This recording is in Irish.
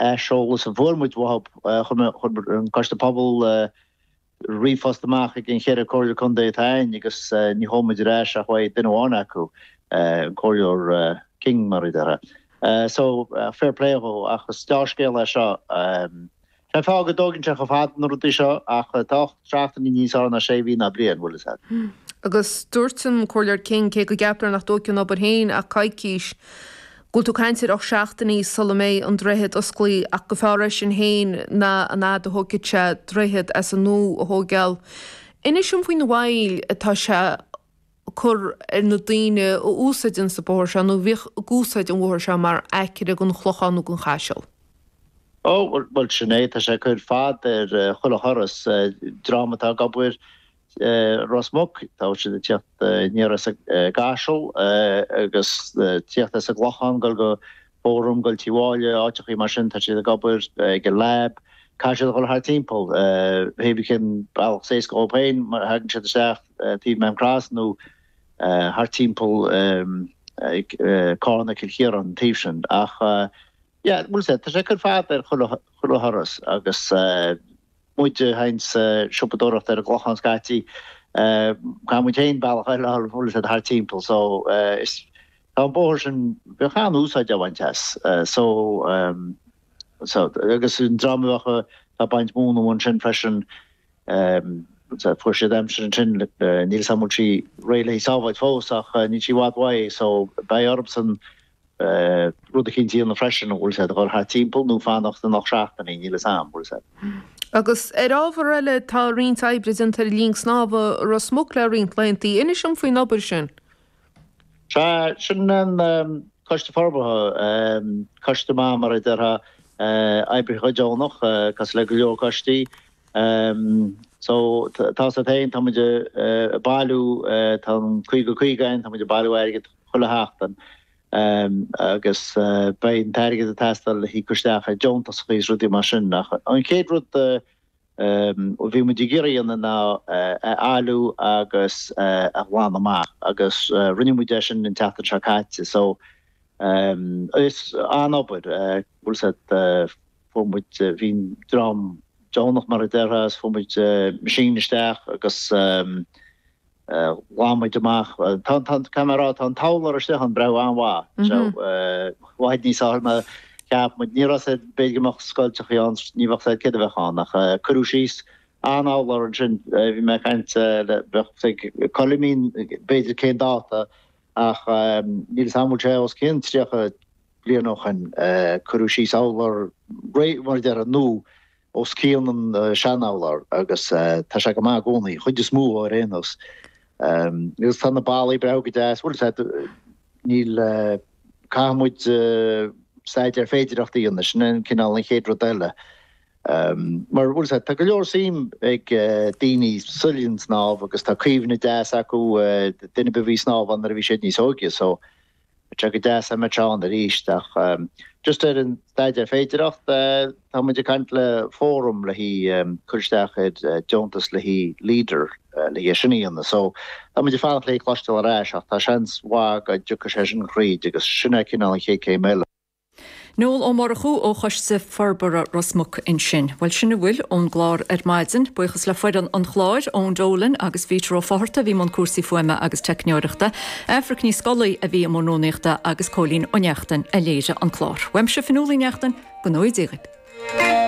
aiseolas a fuair muid uathu, chuir an Coiste Pobal ríomhphost amach chuig an cheithre Comhairleoir Contae atá againn agus níor chuala muid ar ais ach uaidh duine amháin acu, an Comhairleoir King, mar a déarfá. So, fair play dhó ach is dea-scéal é seo. Cén fáth go dtóigeann sé chomh fada na rudaí seo ach tá ocht seachtainí níos fearr ná sé mhí ná bliain, bhfuil 'fhios a'd. Agus dúirt an Comhairleoir King, cé go gceaptar nach dtóigfeadh an obair féin ach coicís, go bhfuil tú ag caint ar ocht seachtainí sula mbeidh an droichead osclaí ach go fearr é sin féin ná an fhad a thógfadh sé droichead as an nua a thógáil. Inis dom faoin mhoill atá sé ag cur ar na daoine a úsáideanns an bóthar seo nó a bhíodh ag úsáid an bhóthair seo mar aicearra gon Chlochán nó gon Chaiseal. Ó, bhuel, sin é, tá sé ag cur fad ar chuile thuras. Dream atá ag obair Ros Muc, tá siad ag tíocht aniar as an gCaiseal agus tíocht as an gClochán, ag dul go Fóram, ag dul Tí Mháille, áiteachaí mar sin, tá siad ag obair, ag an Lab, caithfidh siad a dhul thart timpeall, pé ar bith cén bealach is éasca dhóibh féin, má thagann siad isteach taobh Maam Cross nó thart timpeall Carna, Cill Chiaráin, an taobh sin. Ach yeah, bhuel, sea, tá sé ag cur fad ar chuile thuras agus. muid féin ag siopadóireacht ar an gClochán scaití. Caithfidh muid féin bealach eile a fháil, bhfuil 'fhios a'd, thart timpeall so is tá an bóthar sin, bheadh an-úsáid á bhaint as so so agus an dream a bheadh a' baint mhóna ansin freisin so fuair siad aimsir ansin, níl fhios a'am an bhfuil sí réidh le haghaidh sábháilt fós ach níl sí i bhfad uaidh so beidh orthusan rud eicínt a dhéanamh freisin an bhfuil siad ag dul thart timpeall nó fanacht na hocht seachtainí, níl fhios a'am, bhfuil 'fhios a'd. Agus ar ábhar eile, tá roinnt oibre déanta ar linn snámha Ros Muc le roinnt laethantaí, inis dom faoin obair sin? Sea, sin an Coiste Forbartha, coiste maith mar a déarfá, oibrithe go deonach, cosúil le go leor coistí. So, tá fhios a'd féin, tá muid a' bailiú, tá an caoga caoga a'inn, tá muid a' bailiú airgead, chuile sheachtain agus beidh an t-airgead ag teastáil le híoc isteach ar deontasachaí agus rudaí mar sin. Ach an chéad rud a bhí muid ag iarraidh a dhéanamh ná é a fholmhú agus a ghlanadh amach agus rinne muid é sin an tseachtain seo caite so is an-obair, bhfuil 'fhios a'd, fuair muid, bhí an dream deonach mar a déarfá agus fuair muid machine isteach agus. Ghlan muid amach, Tá an, tá mé rá, tá an t-urlár istigh ann, breathnú an-mhaith. So, i bhfad níos fearr ná cheap muid, ní raibh 'fhios a'd, b'fhéidir go mbeadh scoilteachaí ann, ní bheadh 'fhios a'd céard a bheadh ann ach cuireadh síos an urlár ansin, bhí mé ag caint le, bheadh 'fhios ag Coilimín b'fhéidir cén dáta ach níl 'fhios a'm an bhfuil sé os cionn tríocha bliain ó shin, cuireadh síos urlár réidh, mar a déarfá, nua. os cionn an seanurlár agus tá sé go maith i gcónaí, chuid is mó ar aon nós, agus tá na ballaí breá go deas, bhuel, sea, níl, caithfidh muid staidéar féidireachta a dhéanamh, sin é cineál, an chéad rud eile, mar, bhuel, sea, tá go leor suim ag daoine sa linn snámh agus tá cuimhne deas acu, daoine a bhí ag snámh ann nuair a bhí siad níos óige, so, Sea, go deas dá mbeadh sé ann arís, ach just ar an staidéar féidireacht, tá muid ag caint le Forum le haghaidh cur isteach ar deontas le haghaidh LEADER le haghaidh sin a dhéanamh, so tá muid ag fanacht le haghaidh cloisteáil ar ais, ach tá seans mhaith go dtiocfaidh sé sin thríd agus sin é cineál an chéad céim eile. Noel Ó Murchú ó Choiste Forbartha Ros Muc ansin. Bhuel, sin a bhfuil ón gclár ar maidin. Buíochas le foireann an chláir, Eoin Dolan agus Peter Ó Fátharta a bhí i mbun cúrsaí fuaime agus teicneoireachta, Aifric Ní Scolaí a bhí i mbun rúnaíochta agus Cóilín Ó Neachtain a léirigh an clár. Uaimse, Fionnuala Uí Neachtain, go ngnóthaí Dia daoibh!